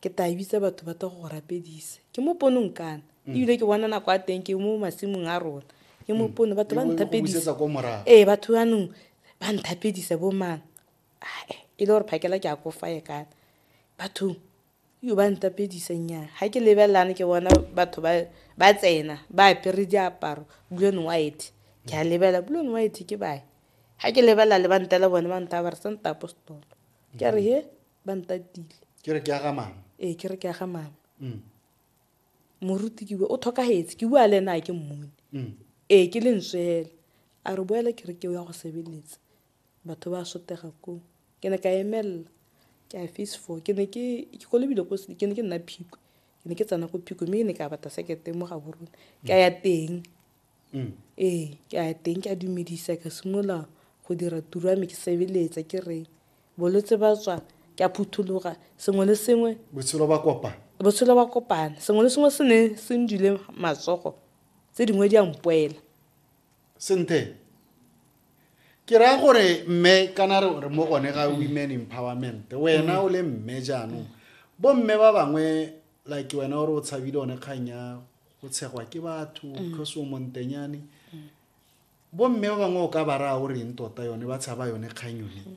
ke tla bitsa batho ba tla go rapedisa ke mo ponong kana mm. ebile ke bona nako a teng ke mo masimong a rona ke mo mm. pono batho ba nthapedisa ee batho anong ba nthapedisa bo mang ae e le gore phakela ke a kofaye kana bathong yo ba ntapedisa nnyang ga ke lebelelane ke bona batho ba tsena ba apere diaparo blue and white ke a lebelela blue and white ke bae ga ke lebelela le ba ntela bone ba nta ba re sa nta apostolo ke a re he ba ntatile ke re ke aga mama ee ke re ke aga mama mm. moruti ke bua o tlhokagetse ke bua le ena a ke mmone mm. ee ke le ntswela a re boela ke re ke o ya go sebeletsa batho ba sotega koo ke ne ka emelela ke a face four ke ne ke ko lebile ko ke ne ke nna phiko ke ne ke tsena ko phiko mme ke ne ka bata sekete mo ga borone ka ya teng Mm. ee ke a teng ke a dumedisa ka simolola go dira tiro ya me ke sebeletsa ke re bolwetse ba tswa ke a phuthologa sengwe le sengwe botshelo ba kopana botshelo ba kopana sengwe le sengwe se ne se ndile matsogo tse dingwe di a mpoela senthe ke raya gore mme kana re re mo gone ga women empowerment wena mm. o le mme jaanong bomme ba bangwe like wena o re o tshabile one kgang ya go tshegwa ke batho mm. because o montenyane mm. bomme ba bangwe o ka ba raya o reng tota yone ba tshaba yone kgang yone mm.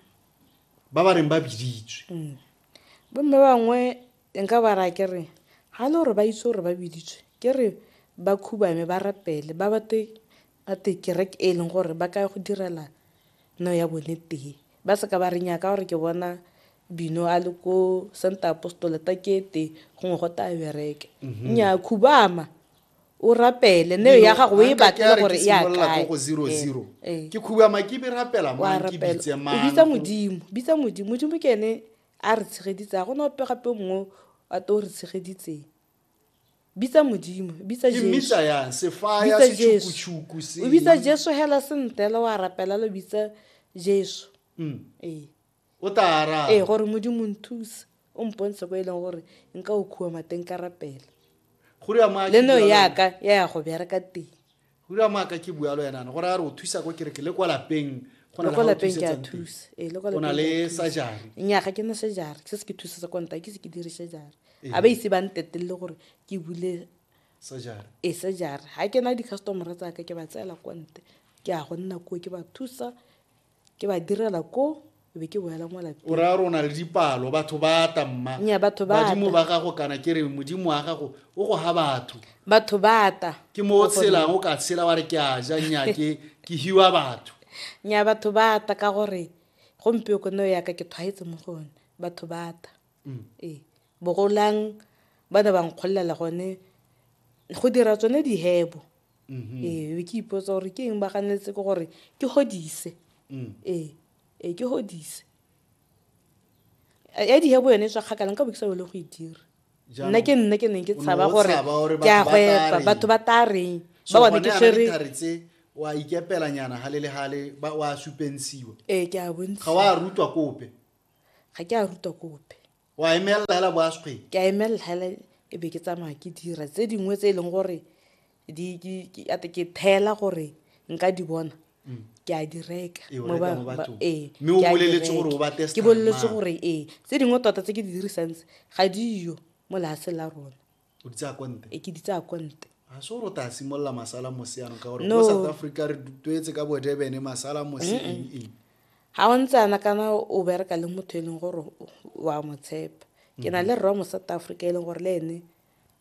ba ba reng ba biditswe bomme ba bangwe nka ba raya ke re ga le gore ba itse gore ba biditswe ke re ba khubame ba rapele ba bate Ba te kereke e leng gore ba ka go direla no ya bone tee. Ba seka ba re nyaa ka gore ke bona bino a le ko center apostole ta ke te gongwe go taya bereke mhm. nyaa khubama o rapele ne ya gago o e batle gore ya kae go 00 eh, eh. ke khubama ke be rapela mo ke bitse mang o bitsa modimo bitsa modimo modimo ke ene a re tshegeditsa go no pe gape mongwe a to re tshegeditseng bitsa modimo bitsa ke mmisa yang sefaya Bitsa Jesu. setšhukutshuku se o bitsa jesu hela sentela wa rapela lo bitsa jesu Mm. ee o tla araba ee gore modimo nthuse o mpontshe ko e leng gore nka o khuwa mateng ka rapela go reya mo a le no kitlang. yaka ya ya go bereka teng hura maaka ke bualo yanana go raya re o thusa ko kereke le kwa lapeng go na le kwa lapeng ke a thusa ee le kwa lapeng na le sajari nya ga ke na sajari se se ke thusa sa kwa nta ke se ke dire sajari ee. a ba ise ba ntetelele gore ke bule sajari ee sajari ga ke na di-customer tsa ka ke ba tseela kwa nte ke a go nna koo ke ba thusa ke ba direla ko e be ke boela mo lapeng o raya rona le dipalo batho ba ata mma nya batho ba badimo ba gago kana ke re modimo wa gago o go ga batho batho ba ata ke mo o tshelang o ka tshela wa re ke a ja nya ke ke hiwa batho nya batho ba ata ka gore gompieo ko neo yaka ke tshwaetse mo go one batho ba ata mm. ee bogolang ba ne ba nkgolelela gone go dira tsone dihebo mm-hmm. ee be ke ipotsa gore ke eng ba ganeletse ke gore ke godise mm. ee ee ke godise ya dihebo yone e tswa kgakalang ka bo ke sa bele go e dira nna ke nne ke neng ke tshaba gore ke a gwepa batho ba tla reng ba bone ke tshwere wa ikepela nyana hale le hale ba wa supensiwa eh ke a bontsi ga wa rutwa kope ga ke a rutwa kope wa emelela hela bo asgwe ke a emelela hela e be ke tsamaya ke dira tse dingwe tse e leng gore ke thela gore nka di bona mm. ke a di reka ee, ke boleletse gore ee tse dingwe tota tse ke di dirisantse ga diyo mo lease la rona o di tsaya konte e ke di tsaya konte ga se gore o ta simolola masala mose yanong ka gore mo south africa re tuetse ka bodebene masala mose eng eng ga o ntse ana kana o bereka le motho e leng gore wa mo tshepa ke na le rra mo south africa e leng gore le ene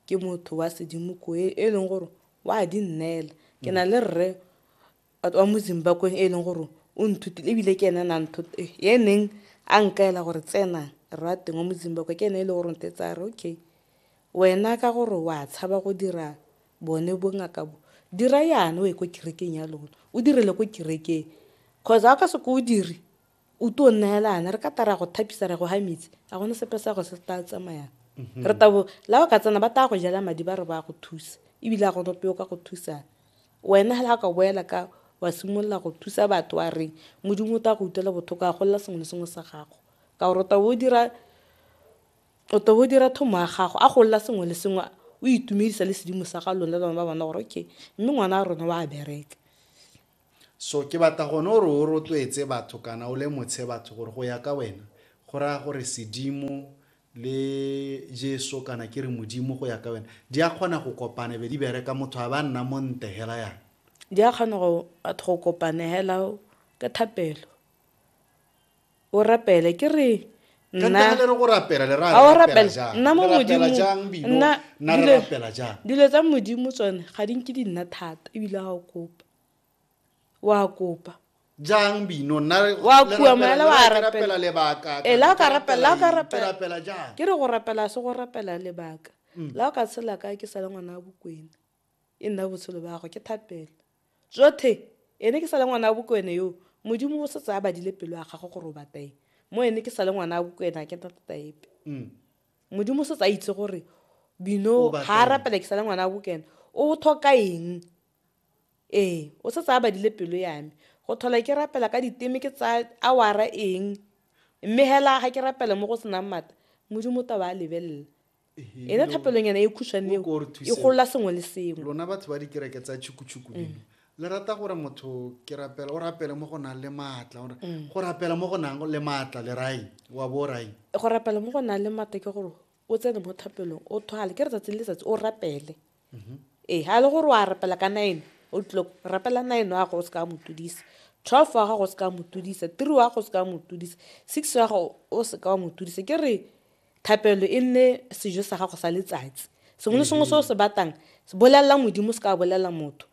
ke motho wa sedimo ko e, e leng gore wa di nnela ke na le rre Batho ba mo Zimbakweng e e leng gore o nthutile e bile ke ene na ya neng a nkaela gore tsena rre wa teng wa mo Zimbakwe ke ene e le gore ntetsa a re okay wena ka gore wa tshaba go dira bone bongaka bo dira yana o ye ko kerekeng ya lona o direle ko kerekeng cause ga o ka se ko o dire O tlo neelana re ka tara go thapisa re go ha metsi a gone sepe sa go se tla tsamayang mhm. re tabo la o ka tsena ba tla go jela madi ba re ba go thusa ebile a gone peo ka go thusana wena hela ka boela ka wa simolola go thusa batho wa reng modimo o tla go utlwela botlhoko a golela sengwe le sengwe sa gago ka gore o tabo o dira o tabo o dira thomo ya gago a golela sengwe le sengwe o itumedisa le sedimo sa ga lone le bana ba bona gore okay mme ngwana a rona wa bereka So ke batla gone gore o rotloetse batho kana o lemotshe batho gore go ya ka wena go raya gore sedimo le jesu kana ke re modimo go ya ka wena di a kgona go kopana be di bereka motho a ba nna mo nte hela yana di a kgona go batho go kopane hela ke thapelo o rapele ke re dilo tsa modimo tsone ga di nke di nna thata ebile ga o kopa wa kopa jang bino wa kua maela wa rapela lebaka e la ka rapela la ka rapela jang ke re go rapela se go rapela lebaka mm. la o ka tshela ka ke sale ngwana wa bokwena e nna botshelo ba gagwe ke thapelo jothe ene ke sa le ngwana wa bokwene yo modimo o setse a badile pelo ya gagwe gore o batla eng mo ene ke sa le ngwana wa bokwene a ke nna tota epe mm. modimo o setse a itse gore bino ga a rapela ke sa le ngwana wa bokwene o tlhoka eng ee o setse a badile pelo ya me go tlhola ke rapela ka diteme ke tsa awara eng mme hela ga ke rapela mo go senang mata modimo taba a lebelela ena thapelonyana e khušwane eo e golola sengwe le sengwe lona batho ba dikereke tsa tšhukutšhuku mm. dino le rata gore motho ke rapela o rapele mo go nang le maatla gore mm. go rapela mo go nang le maatla le rai wa bo rai go rapela mo go nang le maatla ke gore o tsene mo thapelong o thwale ke letsatsi le letsatsi o rapele mm-hmm. ee ga e le gore wa rapela ka nine o tlilo rapela nine wa gago o se ka mo tudisa twelve wa gago o se ka mo tudisa three wa gago o se ka mo tudisa six wa gago o se ka wa mo tudisa ke re thapelo e nne sejo sa gago sa letsatsi sengwe le sengwe se o se batang bolelela modimo se ka bolelela motho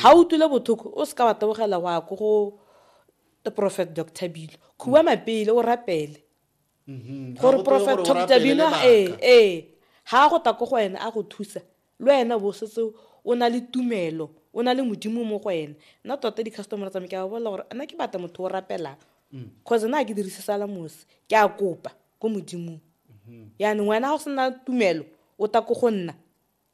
ga o tule bothoko o se ka wa tebogela wa ko go the prophet doctor bilo khuba mapele o rapele mm-hmm. gore prophet toktabino ee ee ga a go ta ko go ene a go thusa le wena bo setse o na le tumelo o na le modimo mo go ene nna tota di-customer tsame ke a bolela gore nna ke batla motho o rapelang cause mm. na ke dirise salamosi ke a kopa ko modimong mm-hmm. yaanong wena ga o sena tumelo o ta ko go nna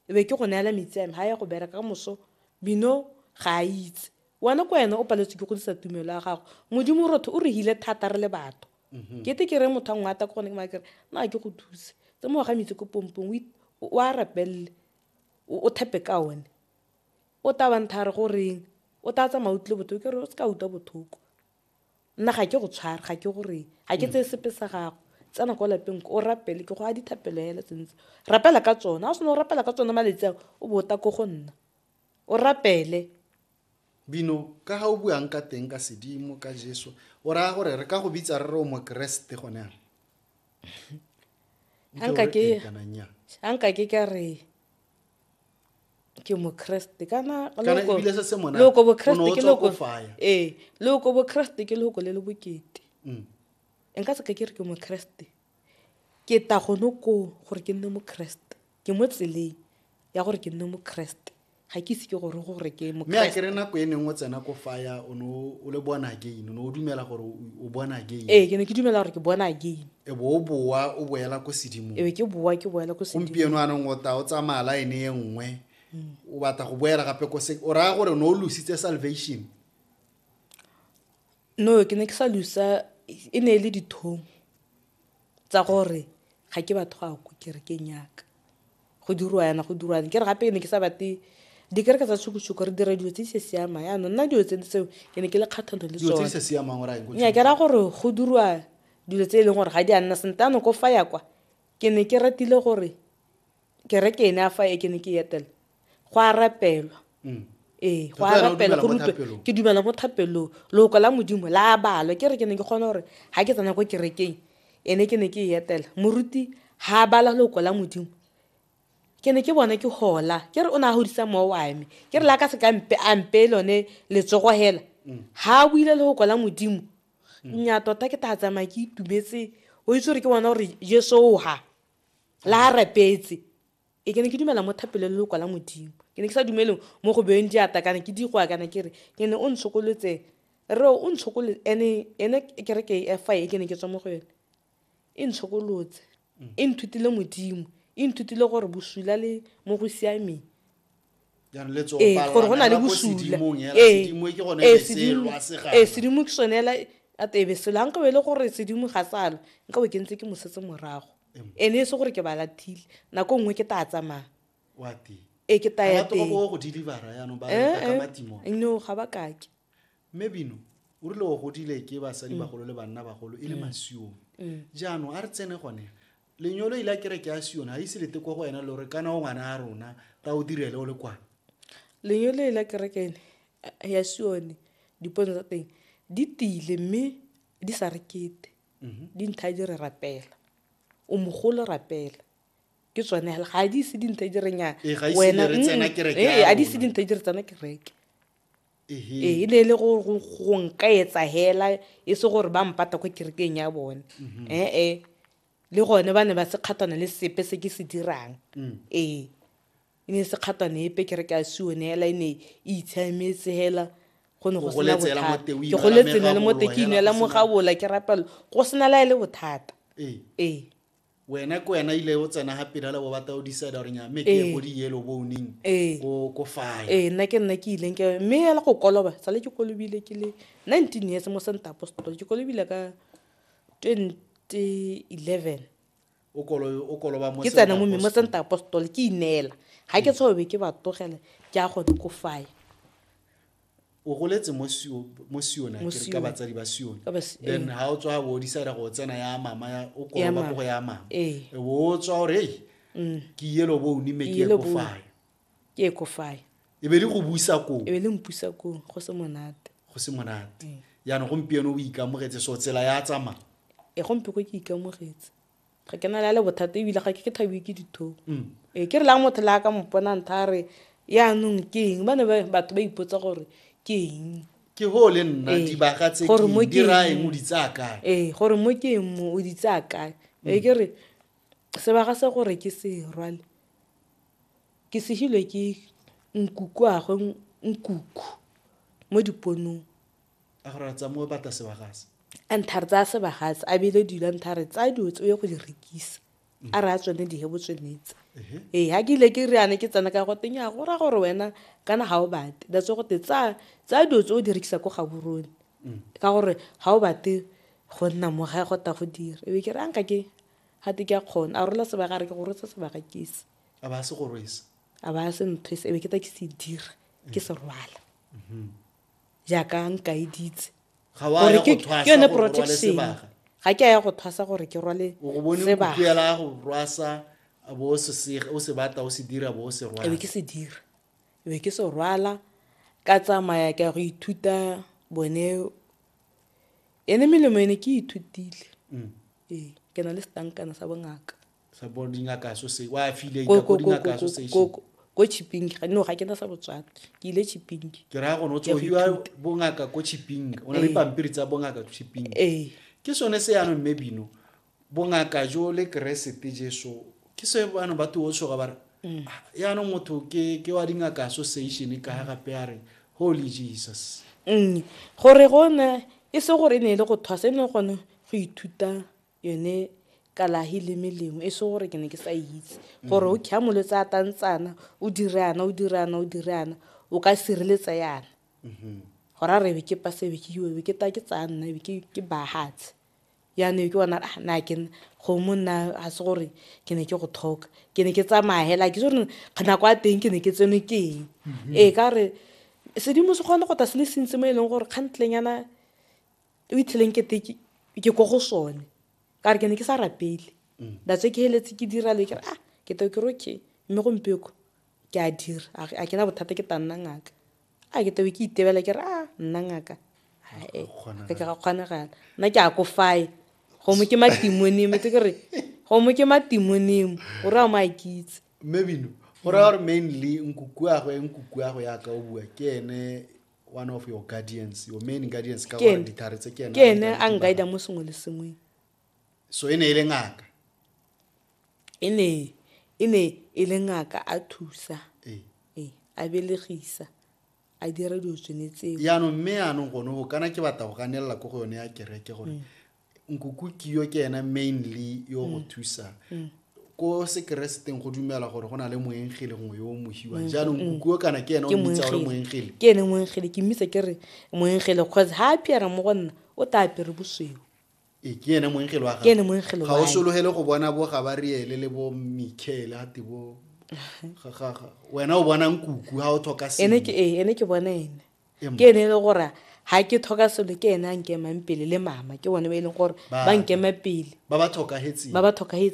e be ke go neela metsi ame ga ya go bereka ka moso bino ga a itse wena ko wena o paletswe ke go disa tumelo ya gago modimo rotho o re hile thata re le batho mhm. ke te ke re motho a ngwe ata ke gone ke makere na ke go thuse tse mo ga metsi ko pompong o a rapelele o thepe ka one o tabantha re go reng o tla tsamaya utlwile bothoko ke re o se ka utlwa bothoko nna ga ke go tshware ga ke gore ga ke tseye sepe sa gago tsena kwa lapeng o rapele ke go a dithapelo hela tsentse rapela ka tsone ga o sena o rapela ka tsone maletsi a o bo ta ko go nna o rapele bino ka ga o buang ka teng ka sedimo ka jesu o raya gore re ka go bitsa re re o mokeresete gone a nka ke ka re ke mokreste kana Kana loko- ebile se se monate, loko o ne o bokreste ke tswa loko ko faya. ee loko bokreste ke loko le le bokete Mm. nka seka ke re ke mokreste ke ta gone koo gore ke nne mokreste ke mo tseleng ya gore ke nne mokreste ga ke ise ke gore gore ke mme a mokreste kere nako e neng o tsena ko faya o ne o o le born again o ne o dumela gore o- o born again ee ke ne ke dumela gore ke bona again e bo o boa o boela ko sedimong ebe ke boa ke boela ko sedimo gompieno anong o ta o tsamaya line e nngwe o batla go boela gape ko se o raya gore o ne o lositse salvation no ke ne ke sa lusa e ne e le dithong tsa gore ga ke batho ga ko kerekeng yaka go dirwa yana go dirwa ke re gape ke ne ke sa batle dikereke tsa tshukutshuku re dira dilo tse di se siamang yaanong nna dilo tse tseo ke ne ke le kgatlhanong le tsone nya ke raya gore go dirwa dilo tse e leng gore ga di a nna sentle ano ko fa ya kwa ke ne ke ratile gore kereke ene a fa e ke ne ke etela go a rapelwa mm. ee go a rapela go rutwe ke dumela mo thapelong loko la modimo la balwa ke re ke ne ke kgone gore ga ke tsena ko kerekeng ene ke ne ke e etela moruti ha a bala loko la modimo ke ne ke bona ke hola ke re o ne a godisa mowa wa me ke re la ka se ka mpe a mpe lone letsogo hela ha a buile loko la modimo nya tota ke tla tsamaya ke itumetse o itse gore ke bona gore jesu o ha la a rapetse Ee, ke ne ke dumela mo thapelo le lokwa la Modimo. Ke ne ke sa dumele mo go beeng diata kana ke digwa kana ke re ke ne o ntshokolotse re o ntshokole ene ene kereke e fa e ke ne ke tswa mo go yone e ntshokolotse e nthutile Modimo e nthutile gore bosula le mo go siameng ee gore go na le bosula ee sedimo ke sone ela a tebe selo ga nkabe e le gore sedimo ga salo nkabe ke ntse ke mosetse morago ene e se gore ke ba lathile nako nngwe ke taa tsamaya e ke taya teng no ga ba kake mme bino o rile o godile ke basadi bagolo le banna bagolo e le masiong jaanong a re tsene gone lenyolo ile a kere ke a sione ga ise lete kwa go wena le gore kana o ngwana a rona ta o direle o le kwana lenyolo ile a kere ke ene ya sione dipono tsa teng di tile mme di sa rekete mm-hmm. dintha di re rapela o mogolo rapela ke tsone ga a di ise dintha di re nya ee, ga ee, a di ise dintha di re tsena kereke ee e ne e le go nka etsa hela e se gore ba mpata kwa kerekeng ya bone mm-hmm. ee le gone ba ne ba se kgathana le sepe se ke se dirang mm. ee e ne e se kgatane epe ke re ke a sione fela e ne e itshiametse fela go ne go sena bothata ke goletse ne le mo te ke inela mo gabola ke rapelo go sena la e le bothata ee, ee. wena ke wena ile o tsena ga pele le bo batla o decide gore nya mme ke go ee. di yellow boning ee. ko ko fire ee nna ke nna ke ileng ke mme ya go koloba sale ke kolobile ke le 19 years mo santa apostol ke kolobile ka 2011 ke tsena mo mmimo tsenta apostole ke ineela ga ke tshwaobe ke ba tlogele ke a go dikofaya o goletse mo siona ke ka batsadi ba sione then ha o tswa bo decide go tsena ya mama ya o kola ba go ya mama ee. e bo o tswa o re mm. ke yelo bo o nime ke go faya ke e kofae e be le go busa koo e be le mpusa koo go se monate go se monate mm. yaanong gompieno o ikamogetse so tsela ya tsamaya e gompe ko ke ikamogetse ga ke na le le bothata ebile ga ke ke thabiwe ke dithong mm. ee ke re lang motho le a ka mopona ntha a re yaanong ke eng ba ne batho ba ipotsa gore ke eng ke go le nna ee. dibaga tse di ra eng o di tsaya kae ee gore mo ke eng mo o di tsaya kae ee ke re sebaga se gore ke se rwale Ke segilwe ke nkukuagwe nkuku mo diponong. A gore a tsa mo bata sebagase. A ntha re tsaya sebagase a beile dilo a ntha re tsaya dilo tse o ye go di rekisa a re a tsone dihebo tsonetse ee ga ke ile ke re yana ke tsena ka go teng ya go ra gore wena kana ga o bate that's go te tsaya tsaya dilo tse o di rekisa ko gaborone ka gore ga o bate go nna mo ga go ta go dira ebe ke re a nka ke Ga te ke a kgona. A rola sebaka, a re ke go rwesa sebaka ke se. A ba a se go rwesa. A ba a se nthwese, e be ke ta ke se dira, ke se rwala. Jaaka nkaeditse. Ga wa ya go thwasa gore o rwale sebaka. Ga ke a ya go thwasa gore ke rwale sebaka. O go bone kukuela go rwasa, a bo o se batla, o se dira, bo o se rwala. E be ke se dira. E be ke se rwala, ka tsamaya ke ya go ithuta bone ene melemo ene ke ithutile mm. ee ke na le setankana sa bongaka ko chipping ga no ga ke na sa botswana ke ile chipping ke raya gone o tsogiwa bongaka ko chipping o na le ee. pampiri tsa bongaka chipping ee. ke sone se yanong mme bino bongaka jo le keresete jeso ke se bano ba tuo tshoga ba re mm. ah, yaanong motho ke wa dingaka association ka ga gape a re holy jesus mm. gore gone e se gore e ne e le go thwasa e ne gone go ithuta yone kalahi le melemo e se gore ke ne ke sa itse gore o kya molwetse a tantsana o dirana o dirana o dirana o ka sireletsa yana mm-hmm. gore a re be ke pasebe ke iwe be ke ta ke tsaya nna be ke bahatse Jaanong ke bona ah na ke kgomo nna ga se gore ke ne ke go thoka ke ne ke tsamaya hela ke gore nako ya teng ke ne ke tsenwe ke eng mhm. ee ka re sedimo se kgone go ta se le sentse mo e leng gore kgantlenyana o itlheleng kete ke ko go sone ka re ke ne ke sa rapele mm. datse ke heletse ke dira le ke re ah ke to ke roke mme gompieko Ke a dira, a re, a ke na bothata ke ta nna ngaka. A ke tabe ke itebela ke re, a nna ngaka? Ae, a ke ga kgonagala. Nna ke a ko fae, gongwe ke matimonimo, tse ke re, gongwe ke matimonimo, o re a mo a kitse. Mme Bino, go raya gore mainly nkukuagwe, nkukuagwe ya ka o bua, ke ene one of your guardians, your main guardians, ka gore ditlhare tse ke ene a nkaida mo sengwe le sengweng. So e ne e le ngaka. E ne e ne e le ngaka a thusa. Ee. Ee, a belegisa. A dira dilo tsone tseo. Yaanong mme yaanong gone go kana ke batla go ganelela ko go yone ya kereke gore mm. nkuku kiyo ke ena mainly yo go mm. thusa. Mm. ko sekereseteng go dumela gore go na le moengele gongwe yo o mohiwa mm, jaanong mm, mm. kukuo kana ke ene o mmitsa gore moengele ke ene moengele ke mmitsa ke re moengele cause ga a piara mo go nna o ta apere bosweu e ke ene moengelo wa ke ene moengelo ga o sologele go bona bo gabariele le bo michael ate bo wena o bona nkuku ga o tlhoka ene ke ee ene ke bona ene ke ene e le gore ga ke tlhoka selo ke ene a nkemang pele le mama ke bone ba e leng gore ba nkema pele ba ba tlhokagetseng